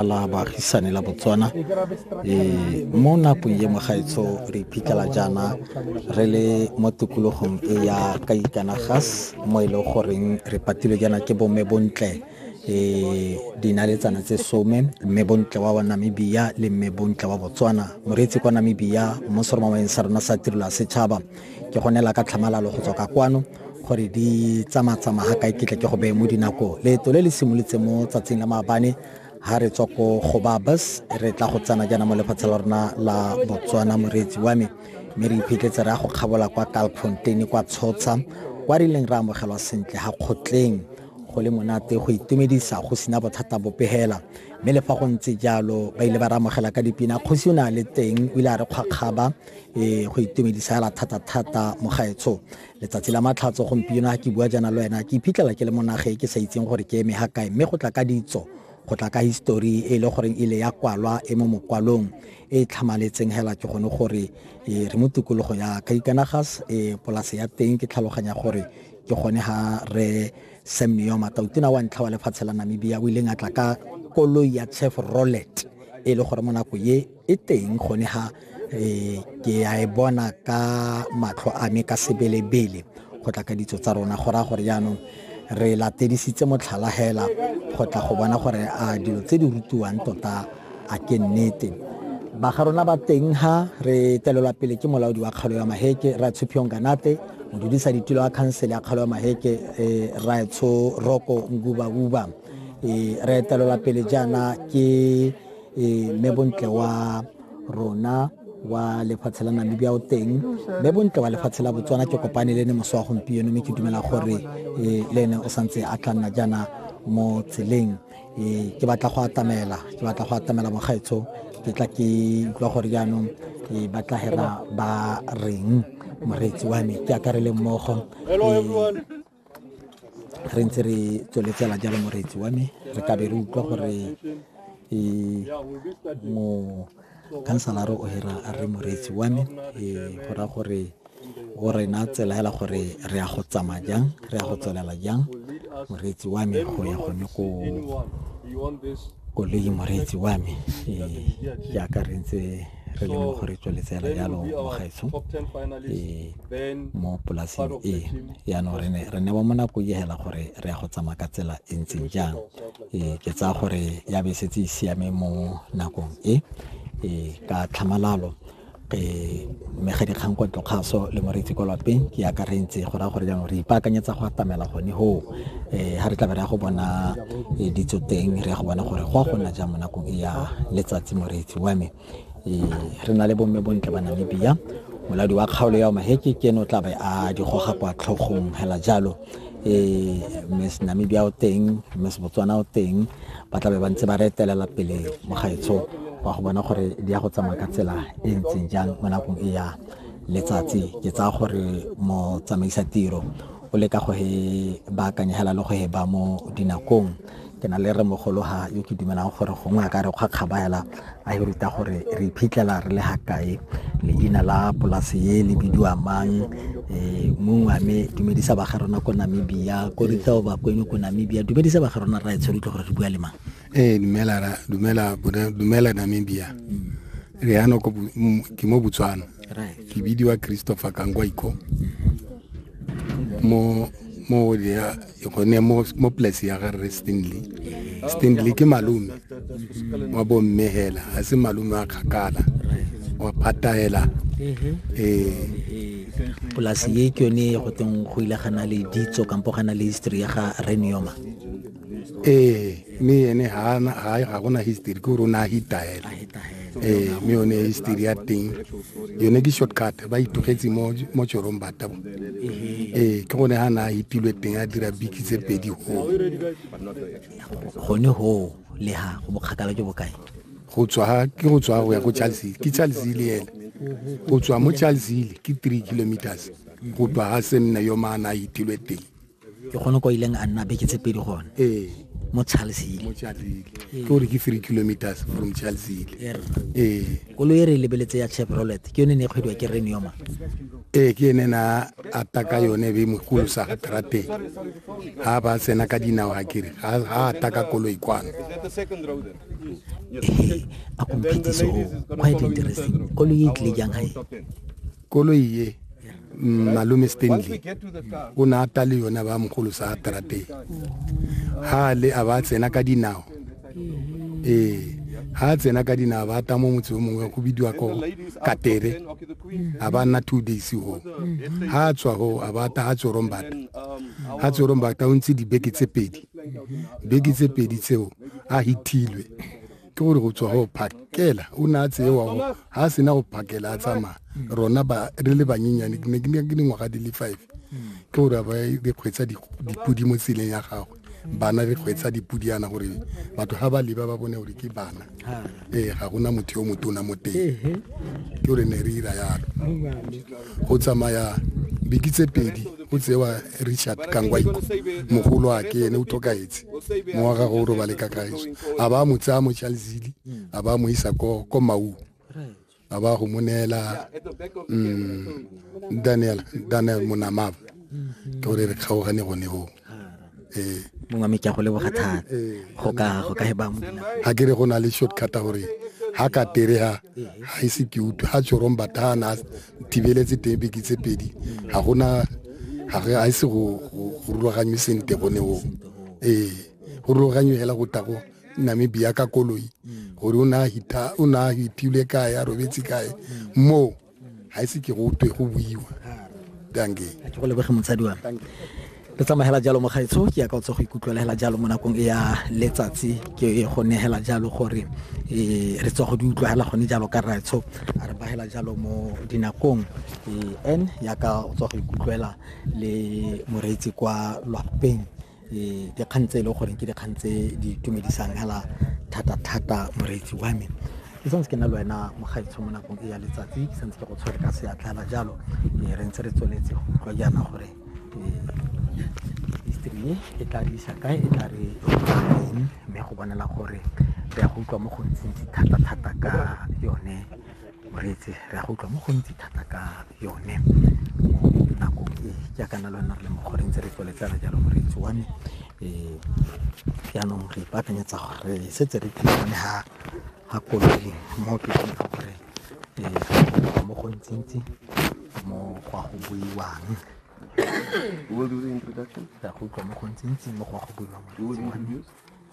la baagisane la botswana um mo nakong ye mogaetsho re iphitlhela jaana re le mo tikologong e ya kaikanagas mo e leng goreng re patilwe jaana ke bomme bontle e dinaletsana tse some mme bontle wa wa namibia le mme bontle wa botswana moreetsi kwa namibia mo seromameng sa rona sa tirelo ya setšhaba ke gonela ka tlhamalalo go tswa ka kwano gore di tsamatsamaya ga kae ke tle ke go beye mo dinako leeto le le simolotse mo tsatsing la maabane ha re tswa ko go babas re tla go tsena jaana mo lefatshe la rona la botswana moreetsi wa me mme re iphitlhetse re ya go kgabola kwa kalfonteine kwa tshotsha kwa re ileng re amogelwa sentle ga kgotleng go le monate go itumedisa go sena bothata bopegela mme le fa go ntse jalo ba ile ba re amogela ka dipina kgosi o ne a le teng o ile a re kgwakgaba um go itumedisa fela thata-thata mogaetsho letsatsi la matlhatso gompieno ga ke bua jaana le wena ke iphitlhela ke le mo nageng ke sa itseng gore ke eme ga kae mme go tla ka ditso go tla ka histori e le goreng e le ya kwalwa e mo mokwalong e e tlhamaletseng hela ke gone gore e, re mo tikologo ya kaikanagas e, polase ya teng ke tlhaloganya gore ke gone ga re sam neoma tautona wa ntlha wa lefatshe la namibia o ileng a tla ka koloi ya chef rollet e le gore mo nako ye e teng gone ha eh, ke a e bona ka matlho a me ka sebelebele go tla ka ditso tsa rona go raya gore jaanong re latedisitse motlhala hela go tla go bona gore a dilo tse di rutiwang tota a ke nnete ba ga rona ba teng ha re telelwa pele ke molaodi wa kgalo ya maheke ra tshuphiong kanate modudisa ditilo wa khansele ya kgalo ya maheke eh, raetsho roko nguba uba eh, re etelelwa pele jaana ke e mme bontle wa rona wa lefatshe la namibia o teng mme bontle wa lefatshe la botswana ke kopane le ne moso wa gompieno mme ke dumela gore e, le ene o santse a tla nna jaana mo tseleng e, ke batla go atamela ke batla go atamela mogaetsho ke tla ke utlwa gore jaanong e, ba tla hera ba reng moreetsi wa me ke akarele mmogo re ntse re tsweletsela jalo moreetsi wa me re kabe re utlwa gore e, mo kansalaro o hira a re moreetsi wa me e, go raya gore o rena tsela hela gore re ya go tsamaya jang re ya go tswelela jang moreetsi wa me go ya gone ko koloi moreetsi wa me e, jaaka re ntse re le mo go re tsweletsela jalo mogaetsho ee, mo polaseng e yaanong re ne re ne ba mo nako e hela gore re ya go tsamaya ka tsela e ntseng jang ee ke tsaya gore ya be e setse e siame mo nakong e ee ka tlhamalalo Eh, mme ga dikgang kwa tlokgaso le moreetsi kwa lapeng ke akarentse go raya gore jaanong re ipaakanyetsa go atamela gone hoo um ga re tla be re ya go bona eh, ditso teng re ya go bona gore go a go nna jang mo nakong e ya letsatsi moreetsi wa me um re na le bomme bontle ba namibia moladi wa kgaolo ya maheke ke ene o tla be a di goga kwa tlhogong hela jalo um miss namibia o teng miss botswana o teng ba tla be ba ntse ba re etelela pele mo gaetsho wa go bona gore di ya go tsamaya ka tsela e ntseng jang mo nakong e ya letsatsi ke tsaya gore motsamaisa tiro o leka go he baakanya hela le go he ba mo dinakong ke na le re mogologa yo ke dumelang gore gongwe a ka re kgwa kgaba hela a e ruta gore re iphitlhela re le ga kae leina la polase ye le bidiwa mang eh, mongwe a me dumedisa ba ga rona ko namibia ko ritao bakweno ko namibia dumedisa ba ga rona ra e tshwere utlwe gore re bua le mang ee dumela dumela dumela namibia re yana ko ke mo botswana ke bidiwa christopher kangwaiko mo mo ya gone mo mo place ya ga re stanley stanley ke malome wa bomme hela a se malome a kgakala wa pataela mm-hmm. eh polasi ye ke yone go teng go ile gana le ditso kampo gana le history ya ga renioma ee mme ene ga gona history ke gore o ne a hitahela ee mme yone history ya teng yone ke shortcut ba itogetse mo tsorong batabo ee ke gone ga ne a hitilwe teng a dira biki tse pedi go gone go le ga go bokgakala jo bokae go tswa ke go tswa go ya ko charles hill ke charles hill ena go tswa mo charles hill ke three kilometers go tswa ga se nne yo maana a hitilwe teng ke gone kwa ileng a nna beke tse pedi gone ee mo charlesile mo charlesile ee. ke gore ke three kilometers from charlesile ee kolo e re lebeletse ya chevrolet ke yone ne e kgwediwa ke renioma ee ke ene na ataka yone be mo kolosa ga trateng ga ba tsena ka dinao ga kere ga ataka kolo e kwano ee a komphetise o quite interesting kolo e tlile jang gae koloi e mm, malome stanley o ne a ta le yone ba mogolo sa trateng ha le a ba tsena ka dinao ee ha tsena ka dinao ba ta mo motse o mongwe go bidiwa ko katere a ba nna two days go ha a tswa go a ba ta ha tsorombata ha tsorombata o ntse dibeke tse pedi beke tse pedi tseo a hitilwe ke gore go tswa go phakela o ne a tseewa go ga a sena go phakela a tsamaya rona ba re le banyenyane ke ne ke dingwaga di le five ke gore ba re kgwetsa dipodi mo tseleng ya gagwe bana re kgwetsa dipodi yana gore batho ga ba leba ba bone gore ke bana ee ga gona motho yo motona mo teng ke gore ne re ira yalo go tsamaya beke tse pedi o tsewa richard kangwaiko mogolo a ke ene o tlhokaetse mo wa gagwe o robale ka kaeso a ba mo tsaya mo chalzili a ba mo isa ko ko mau a ba go mo neela mm, daniel daniel monamava ke gore re kgaogane gone go ee mongwe mme ke a go leboga thata go ka go ka he ba mo ga ke re go na le shortcut gore ha ka tere ha ha ise ke utlwe ha tshorong bathana thibeletse teng beke tse pedi ga gona ga re a ise go rulaganywe sente gone o ee go rulaganywe hela go tago namibia ka koloi gore o ne a hita o ne a hitilwe kae a robetse kae moo ga ise ke go twe go buiwa danke ke go lebege motsadi wa re tsamagela jalo mogaetsho ke ya ka o tse go ikutlwelegela jalo mo nakong e ya letsatsi ke go negela jalo gore um re tswa go di utlwagela gone jalo ka raetsho a re bagela jalo mo dinakong um n yaka o tswa go ikutlwela le moreetsi kwa lwapeng dikgang tse e le gore ke dikgang tse di itumedisang hela thata-thata moreetsi wa me ke santse ke na le wena mogaitsho mo nakong e ya letsatsi ke santse ke go tshwere ka seatla hela jalo mme re ntse re tsweletse go utlwa jaana gore history e e tla re isa kae e tla re eng mme go bonela gore re ya go utlwa mo go ntsintsi thata-thata ka yone Moreetsi re a go utlwa mo gontsi thata ka yone mo nakong e jaaka na le wena re le mo gore ntse re tsweletsana jalo moreetsi wa me um jaanong re ipaakanyetsa gore re setse re thulane ga ga koloi mo ke kgone gore um mo go ntsintsi mo go a go buiwang We'll do the introduction. re a go utlwa mo go ntsintsi mo go a go buiwang moreetsi wa me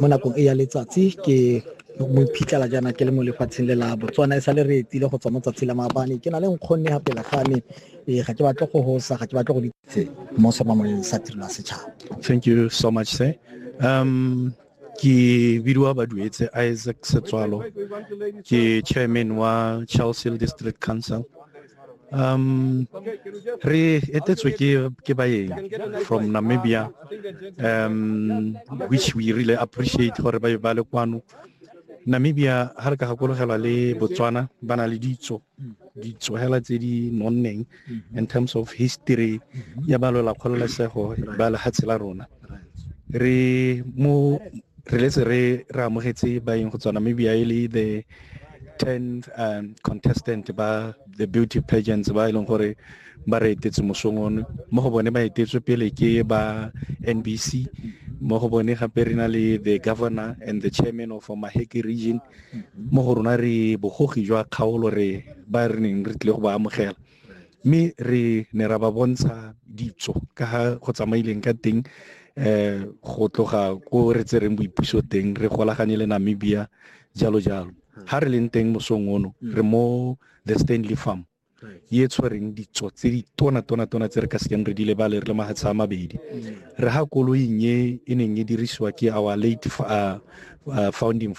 mo nakong e ya letsatsi ke mo iphitlhela jaana ke le mo lefatsheng le la botswana e sale re etile go tswa mo tsatsi la maabane ke na le nkgonne ga pela ga me ee ga ke batle go hosa ga ke batle go ditse mo sa mamoleng sa tirelo ya setšhaba thank you so much sir um ke bidiwa baduetse isaac setswalo ke chairman wa charleshill district council Um, re etetswe ke ke baeng from Namibia um which we really appreciate gore ba ba le kwano Namibia ha re ka gakologelwa le Botswana ba na le ditso ditso hela tse di nonneng mm-hmm. in terms of history mm-hmm. ya ba lola kgololesego ba lehatshe la rona re mo re letse re re amogetse baeng go tswa Namibia e le the 10 um, contestant ba the beauty pageants ba e leng gore ba re etetse mosong one mo go bone ba etetswe pele ke ba nbc mo go bone gape re na le the governor and the chairman of maheke region mo go rona re bogogi jwa kgaolo re ba re neng re tlile go ba amogela mme re ne ra ba bontsha ditso ka ga go tsamaileng ka teng eh go tloga ko re tsereng boipuso teng re golaganye le Namibia jalo jalo hmm. ha re leng teng mosong ono hmm. re mo the Stanley Farm ye tshwereng ditso tse di tona tona tona tse re ka sekeng re di lebale re le mahatsha a mabedi hmm. re ha koloing e e neng e dirisiwa ke our late uh, uh, founding